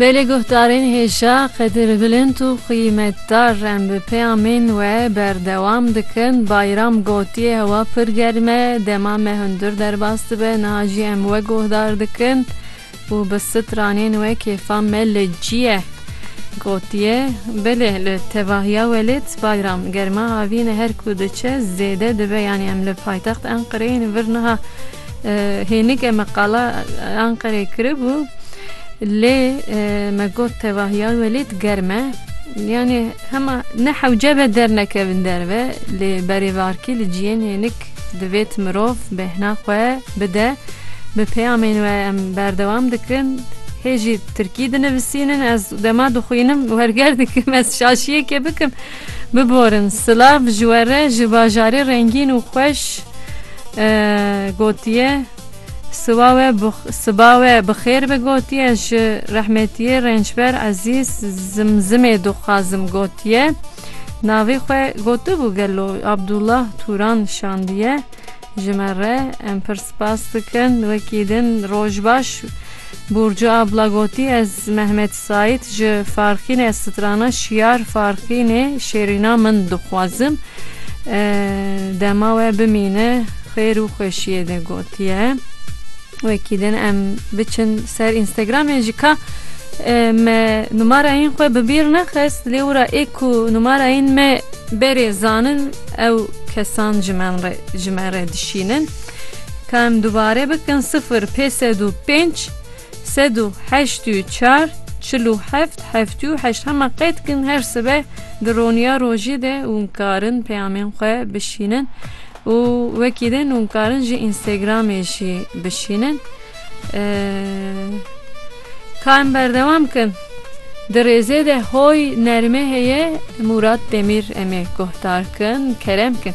Belê guhdarên hêja qedir bilind û qîmetdar em bi peyamên we berdewam dikin. Bayram gotiye hewa pir germ e, dema me hundir derbas dibe niha jî em we guhdar dikin û bi stranên we kêfa me li cî ye. Gotiye, Belê li tevahiya welêt Bayram germa avîn e her ku diçe zêde dibe yanî em li paytext Enqereyê in vir niha Hênike me qala Anqerê kiribû lê me got tevah ya welê digerm e. Yanê hema ne hewce be dernekevin derve lê berêvarkî li ciyên hênik divêt mirov bêhna xwe bide. Bi peyamên we em berdewam dikin. Hê jî tirkî dinivisînin ez dema dixwînim werger dikim ez şaşiyekê bikim. Biborin, silav ji we re ji bajarê rengîn û xweş gotiye. Siba we siba we bi xêr be gotiye. Ji rehmetiyê rêncber Ezîz Zimzimê dixwazim gotiye. Navê xwe gotibû gelo Abdullah Turan şandiye. Ji me re em pir spas dikin. Wekî din roj baş. Burcu abla gotî ez Mehmet Saîd ji Farxînê ez strana Şiyar Farxînê Şêrîna min dixwazim dema we bimîne xêr û xweşiyê de gotiye. Wekî din em biçin ser Instagramê ji ka me numarayên xwe bi bîr nexist lê wira ê ku numarayên me berê zanin Ew kesan ji men re ji me re dişînin. Ka em dubare bikin sifir pê sed û pênc sed û heşt û çar çil û heft heftî û heşt hema qey dikin her sibe di roniya rojê de hûn karin peyamên xwe bişînin û wekî din hûn karin ji Instagramê jî bişînin. Ka em berdewam bikin. Di rêzê de hoy nermê heye Mûrat Demîr em ê guhdar kin, kerem kin.